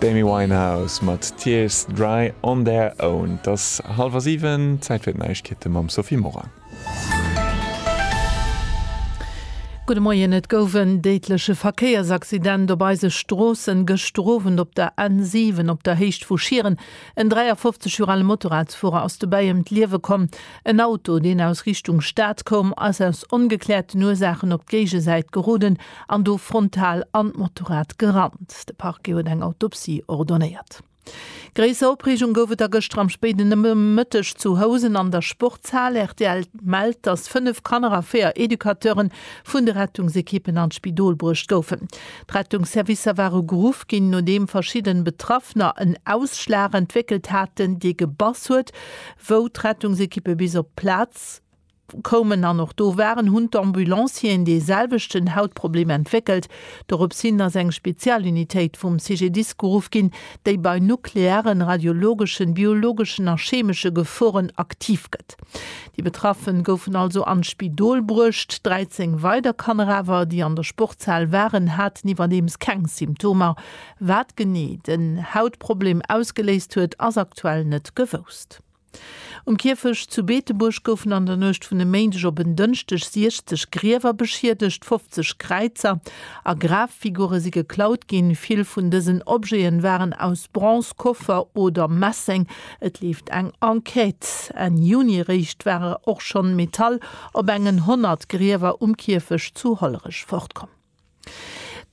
D'Amy Winehouse mat Tears Dry on their own. Et ass hallwer siwen, Zäit fir d'Neiegkeete mam Sophie Morang. Gudde Moien, Et gouf en déidleche Verkéiersaccident op eise Stroossen gëschter Owend op der N7 op der Héicht vu Schieren. En 53 Joer ale Motorradsfuerer ass dobäi ëm d'Liewe komm. En Auto, deen aus Richtung Stad koum, ass aus ongekläerten Ursaachen op d'Géigesäit geroden. an do frontal an d'Motorrad gerannt. De Parquet huet eng Autopsie ordonéiert. Gréisser Opreegung gouf et da gëschter am spéiden Nomëtteg zu Housen an der Sportshal. Rtl mellt, datt 5 Kanner a 4 Educateure vun de Rettungsekippen an d'Spidol bruecht goufen. D'Rettungsservicer ware geruff ginn, nodeem verschidden Betraffener en Ausschlag entwéckelt haten, dee gebass huet, wou d'Rettungsekippe bis op d'Plaz, koumen an och do waren, hunn d'Ambulancieren dee selwechten Hautproblem entwéckelt. Dorops hin ass eng Spezialunitéit vum CGDIS geruff ginn, déi bei nuklearen, radiologeschen, biologeschen a chemesche Geforen aktiv gëtt. Déi Betraffen goufen also an d'Spidol bruecht. 13 weider Kanner awer, déi an der Sportshal waren, haten iwwerdeems keng Symptomer. Wat genee den Hautproblem ausgeléist huet, ass aktuell net gewousst. Um Kierfecht zu Beetebuerg goufen an der Nuecht vun e Méindeg op en Dënschdeg 60 Griewer beschiedegt, 50 Kräizer a Graffigure si geklaut ginn. Vill vun dësen Objeten waren aus Bronz, Koffer oder Messeng. Et leeft eng Enquête. Enn Juni eréischt ware och schonn Metall op engen 100 Griewer um Kierfecht zu Hollerech fortkomm.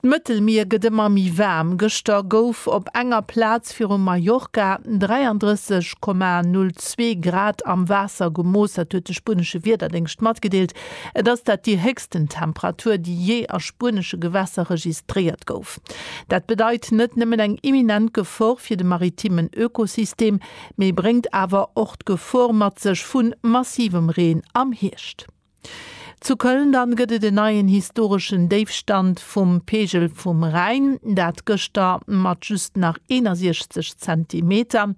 D'Mëttelmier gëtt ëmmer méi waarm. Gëschter gouf op enger Plaz viru Mallorca 33,02 Grad am Waasser gemooss. Dat huet de spuenesche Wiederdéngscht matgedeelt. Et ass dat déi héchsten Temperatur, déi jee a spuenesche Gewässer registréiert gouf. Dat bedeit net nëmmen eng imminent Gefor fir de maritimen Ökosystem, mee bréngt awer och d'Gefor mat sech vu massivem Reen am Hierscht. Zu Köln dann gëtt et en neien historeschen Déifstand vum Pegel vum Rhäin, dat gëschter mat just nach 61 Zentimeter.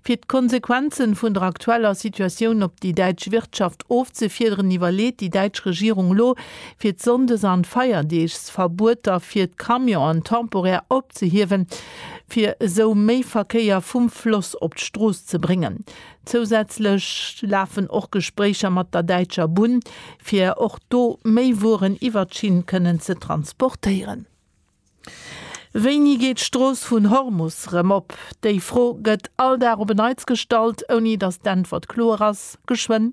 Fir d'Konsequenzen vun der aktueller Situatioun op déi däitsch Wirtschaft ofzefiederen, iwwerleet déi däitsch Regierung elo, fir d'Sonndes an Feierdeegsverbueter fir d'Camionen temporär opzehiewen, fir esou méi Verkéier vum Floss op d'Strooss ze bréngen. Zousätzlech lafen och Gespréicher mat der Däitscher Bunn, fir och do méi Wueren iwwert d'Schinn kënnen ze transportéieren. Wéini geet d'Strooss vun Hormus rëm op? Déi Fro gëtt all Dag op en Neits gestallt, ouni datt d'Äntwert kloer ass, Geschwënn!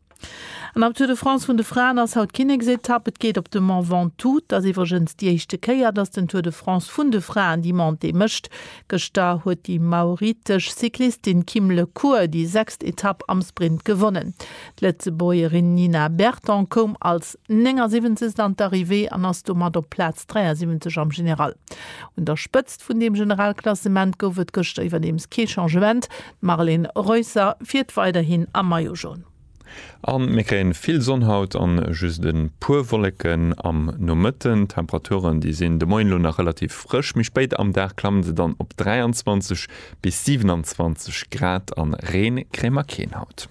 An am Tour de France vun de Fraen ass haut d'Kinneksetapp. Et geet op de Mont Ventoux. Et ass iwwregens déi éischte Kéier, datt den Tour de France vun de Fraen déi Montée mécht. Gëschter huet déi mauritesch Cyclistin Kim Le Cours déi sechst Etapp am Sprint gewonnen. D'Lëtzebuergerin Nina Berton koum als 79. an d'Arrivée an ass domat op Plaz 73 am General. Un der Spëtzt vun deem Generalklassement gouf et gëschter iwwerdeems kee Changement. Marlene Reusser fiert weiderhin am Maillot Jaune. An mir kréien vill Sonn haut an just en puer Wollécken am Nomëtten. D'Temperaturen déi sinn de Moien lo nach relativ frësch, méi spéit am Dag klammen se dann op 23 bis 27 Grad an Reen kréie mer keen haut.